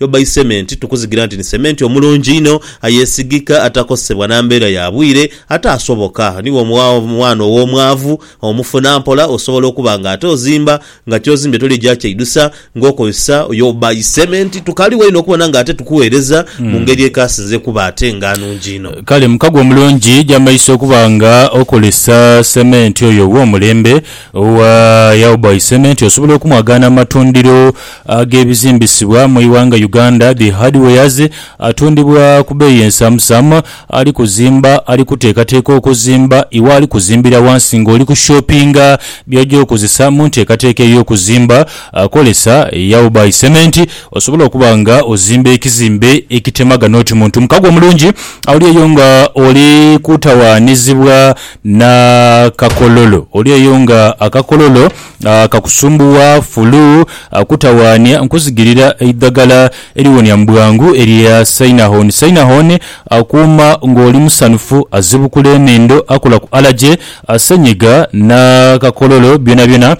Yo by cement tukuzigira nti ni cement omulungi inho, ayesigika, atakosebwa na mbeera ya bwire, ate asoboka. Ni wo mwaana ow'omwaavu omufuna mpola osobola okuba nga ate ozimba nga ky'ozimbye toligya kyeidusa ng'okozesa yo by cement. Tukaligho inho okubona nga ate tukuweereza mu ngeri ekasinze okuba ate nga nungi inho. Kale mukago omulungi gy'amaiso okuba nga okozesa cement oyo ow'omulembe owa Yaw by Cement osobola okumwagaana mu matundiro ag'ebizimbisibwa mu ighanga Uganda, dhi hardwares, atundibwa ku beeyi ensaamusaamu, ali kuzimba, ali kuteekateeka okuzimba, iwe ali kuzimbira ghansi ng'oli ku shoppinga by'oja okozesa mu nteekateeka ey'okuzimba, kolesa Yao by Cement osobole okuba nga ozimba ekizimbe ekitemagana oti muntu mukago mulungi oli eyo nga oli kutawaanizibwa na kakololo, oli eyo nga akakololo. Akakusumbuwa, fulu, kutawaania, nkuzigirira eidhagala eriwonia mu bwangu erya Sainahon. Sainahon akuuma ng'oli musanhufu, azibukula enhindo, akola ku alaje, senyiga n'akakololo byonabyona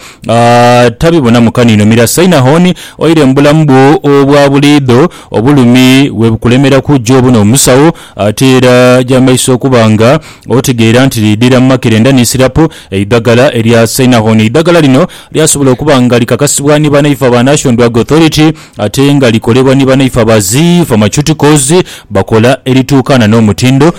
tabibonamu kaniino. Mira Sainahon oire mu bulamu bwo obwa buliidho. Obulumi bwe bukulemeraku ja obone omusawo ate era ja maiso okuba nga otegeera nti liidhira mu makerenda ni sirapu. Eidhagala erya Sainathon. Eidhagala lino lyasobola okuba nga likakasibwa ni banaife aba National Drug Authority ate nga likolebwa ni banaife aba Zi Pharmaceuticals bakola erituukaana n'omutindo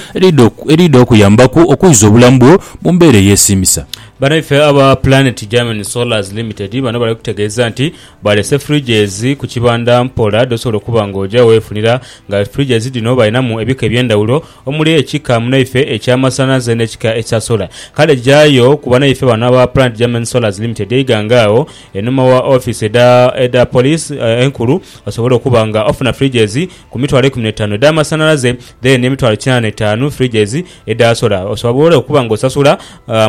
eriidha okuyambaku okwiza obulamu bwo mu mbeera eyeesiimisa. Banaife aba Planet Germany Solars Limited bano bali kutegeeza nti baalese fridges ku kibanda mpola dh'osobola okuba ng'oja weefunira nga fridges dhino balinamu ebika eby'endhawulo omuli ekika munaife ekya Masanaze n'ekika ekya Solar. Kale jayo ku banaife bano aba Planet German Solars Limited eighanga agho enhuma wa ofiisi edha edha poliisi enkulu osobole okuba nga ofuna fridges ku mitwalo eikumi n'etaanu edha masanalaze then n'emitwalo kinaana n'etaanu fridges edha solar osobole okuba nga osasula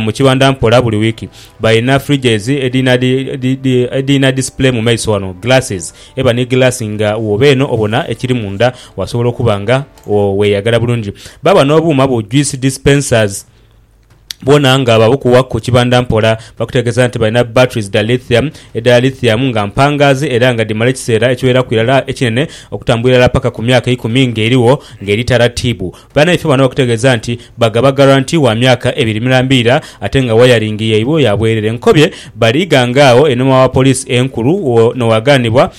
mu kibanda mpola buli wiiki. Balina fridges edhina edhina display mu maiso ghano, glasses, eba ni glass nga woba eno obona ekiri munda wasobola okuba nga. Wo weyagala bulungi baaba n'obuuma bu juice dispensers bwona nga babukuwa ku kibanda mpola. Bakutegeeza nti balina batteries dha lithium edha lithium nga mpangaazi era nga dhimala ekiseera ekiweraku irala ekinene okutambula irala paka ku myaka ikumi nga erigho nga eri taratiibu. Banaifee bano bakutegeeza nti bagaba guarantee wa myaka ebiri mirambiira ate nga wayaringi yaibwe ya bwerere. Nkobye bali ighanga agho einhuma wa police enkulu wo n'owaganibwa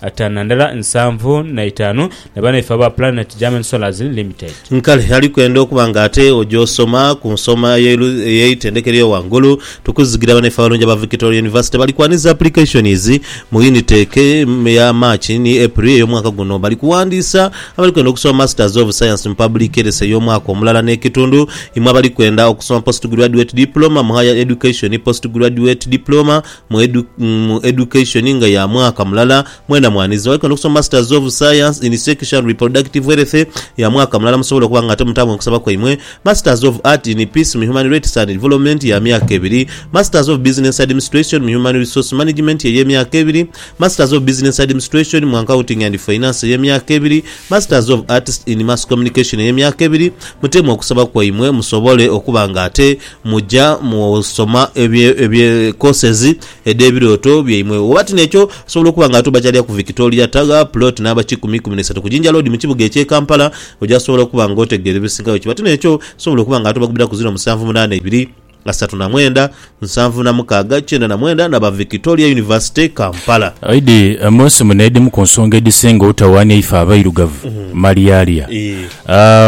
Atana ndala nsanvu na itaanu ne banaife aba Planet German Solars Limited. Nkale ali kwenda okuba nga ate ogyosoma ku nsoma ey'eitendeka ery'o ghangulu, tukuzigira banaife abalungi aba Victoria University bali kwanhiza applications mu Unitec ya March ni April ey'omwaka guno. Bali kuwandiisa abali kwenda okusoma Masters of Science mu Public Health ey'omwaka omulala n'ekitundu, imwe abali kwenda okusoma Postgraduate Diploma mu Higher Education, Postgraduate Diploma mu edu, mu education nga ya mwaka mulala mwena mwanizira wali kwenda okusoma masters of science in sexual reproductive health ya mwaka mulala musobola okuba nga ate mutambwe mukusaba kwaimwe masters of art in peace mu human rights and development ya myaka ebiri masters of business administration mu human resource management eye myaka ebiri masters of business administration mu accounting and finance eye myaka ebiri masters of arts in mass communication eye myaka ebiri mutemu okusaba kwaimwe musobole okuba nga ate Muja mu soma ebye ebye courses edhe birooto byaimwe. Oba tino ekyo osobola okuba nga atuba kyalya ku Victoria Tagha plot namba kikumi ikumi n'eisatu ku Jinja Road mu kibuga ekye Kampala oja sobola okuba nga otegeera ebisingayo. Kiba tino ekyo osobola okuba nga atuba kubira ku ziro musanvu munaana ibiri, asatu na mwenda, nsanvu na mukaaga, kyenda na mwenda naba Victoria University Kampala. Aidhi munsi muno edhimu ku nsonga edhisinga obutawaania ife abairugavu malyalya.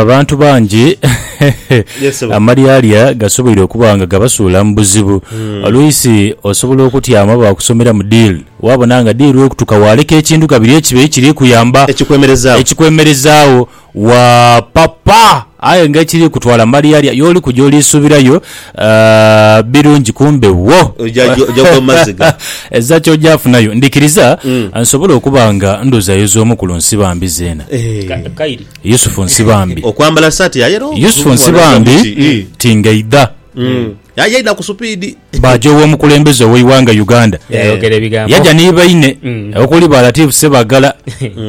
Abantu bangi amalyalya gasoboire okuba nga gabasuula mu buzibu. Oluisi osobola okutyama baakusomeramu diili, waabona nga diili ekutuka waaleka ekintu kabiri ekiba ekiri kuyamba ekikwemerezaagho, waapapa aye nga ekiri kutwala amalyalya y'oli kuja oliisuubirayo. Birungi kumbe wo. Oja oja gwa maziga. Ezza ky'oja afunayo. Ndikiriza nsobole okuba nga ndhozayoza omu ku lu Nsibambi zeena. Ka, Eeh. kairi. Yusufu Nsibambi. Okwambala saati ya yellow. Yusufu Nsibambi ti ng'eidha. Aye yaidha ku supiidi. Baaja ow'omukulembeze ow'eighanga Uganda. Yayogera ebigambo. Yaja ni baine okuli ba Latif Ssebaggala.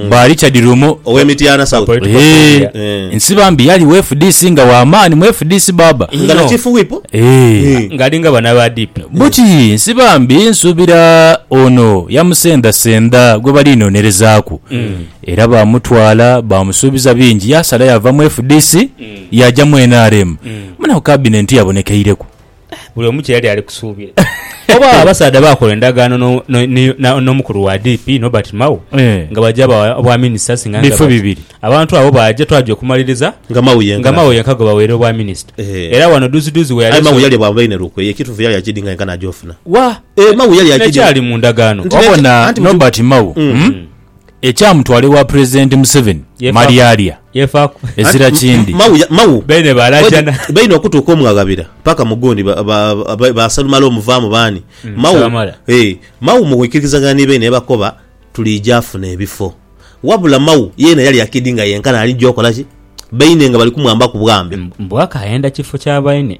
Bwa Richard Lumu owe Mityana South eeh. Nsi bambi yali we fdc nga wa maani mu fdc baaba. Nga na chief whip eeh. Nga alinga bano aba DP. Buti nsi bambi nsubira ono yamusendha sendha gwebali nonerezaaku era bamutwala bamusuubiza bingi yasala yava mu fdc yaja mu nrm muna ku cabinet yabonekeireku. buli omu kye yali ali kusuubira. Oba abasaadha baakola endagaano no- no- ni- na- n'omukulu wa DP, Norbert Mao, Eh. nga baja bawa obwaminisita asinga nga Bifo bati, bibiri. Abantu abo baaja twaja okumaliriza Nga Mao yenka. nga Mao yenka gwe baweera obwaminisita. Eh. Era wano duuziduuzi we Aye yali Mao yalya bwa bulaine lukwe. Ye ekituufu yalya kidi nga yenka n'agyofuna. Wa! Eh, Mao yalya kidi. N'ekyali mu ndagaano. Nti- Wabona Anti mutu- Norbert Mao Mm. mm, Ekyamutwala ewa Pulezidenti Museveni malyalya ezira kindi. Baine okutuuka omwaghabira paka mu gundi ba Salumale omuvaamu baani? Mau mu kwikiririzagana ni baine yabakoba tuliija afuna ebifo. Wabula Mau yeena yali akidi nga yenkana alija okola ki? Baine nga bali kumwambaku bwambe. Mbu akayenda kifo kya baine.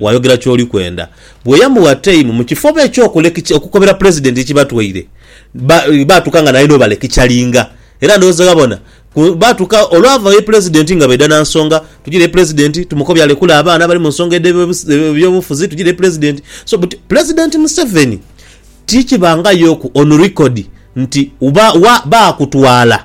waayogera ky'oli kwenda. Bweyamugha teimu mu kifo oba eky'okulekica okukobera Pulezidenti ki batwaire, ba, baatuka nga naye n'obalekicalinga. Era ndowooza ghabona, ku, baatuka olwava ye Pulezidenti nga baidha na nsonga, tugire ye Pulezidenti, Tumukobya alekule abaana abali mu nsonga edh'ebyobufuzi, tugire ye Pulezidenti. So, but Pulezidenti Museveni, ti kibangayoku on record nti, ba, wa, baakutwala.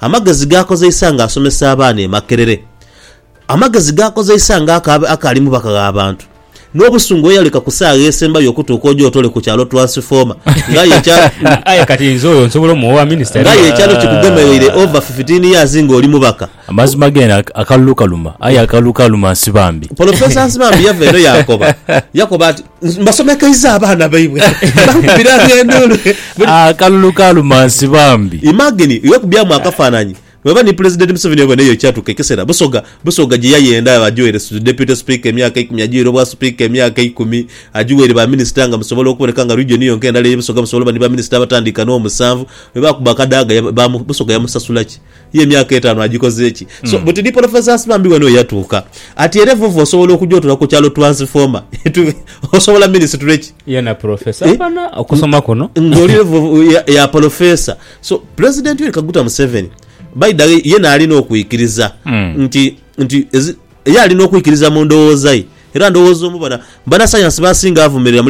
Amagezi g'akozeisa ng'asomesa abaana e Makerere. Amagezi g'akozeisa ng'akaali mubaka gh'abantu. N'obusungu bwe yaleka ku saagha esembayo okutuuka ogyotole ku kyalo Transformer ng'aye ekyalo. Aye kati nze oyo nsobola omuwa minisita? Ng'aye ekyalo kikugemereire over fifteen years ng'oli mubaka. Amazima geene akalulu kaluma, aye akalulu kaluma Nsibambi. Polofesa Nsibambi yava eno yaakoba. Yakoba ati. mbasomekeiza abaana baibwe bakubira endulu akalulu ah, ka lumansi bambi imagine iwe kubyamu akafananyi weba ni president museveni oba neyo kyatuka ekisera busoga busoga gye yayenda ajuwere deputy speaker emyaka ikumi ajuwere obwa speaker emyaka ikumi ajuwere ba minister nga musobola okuboneka nga region yonka endala eye busoga musobola ba ni ba minister abatandika no musanvu weba kuba kadaga busoga yamusasula ki Ye emyaka etaanu agikoze ki? So hmm. buti ni professors bambi wena oyatuuka ati era evovo osobola okuja otula ku kyalo transformer osobola ministry ki yena professor eh? bana okusoma kuno ngoli evovo ya, ya professor so president Yoweri Kaguta Museveni baida yena alina okuikiriza hmm. nti nti ye alina okuikiriza mu ndowooza ye era ndowooza omu bana bana science basinga avumirira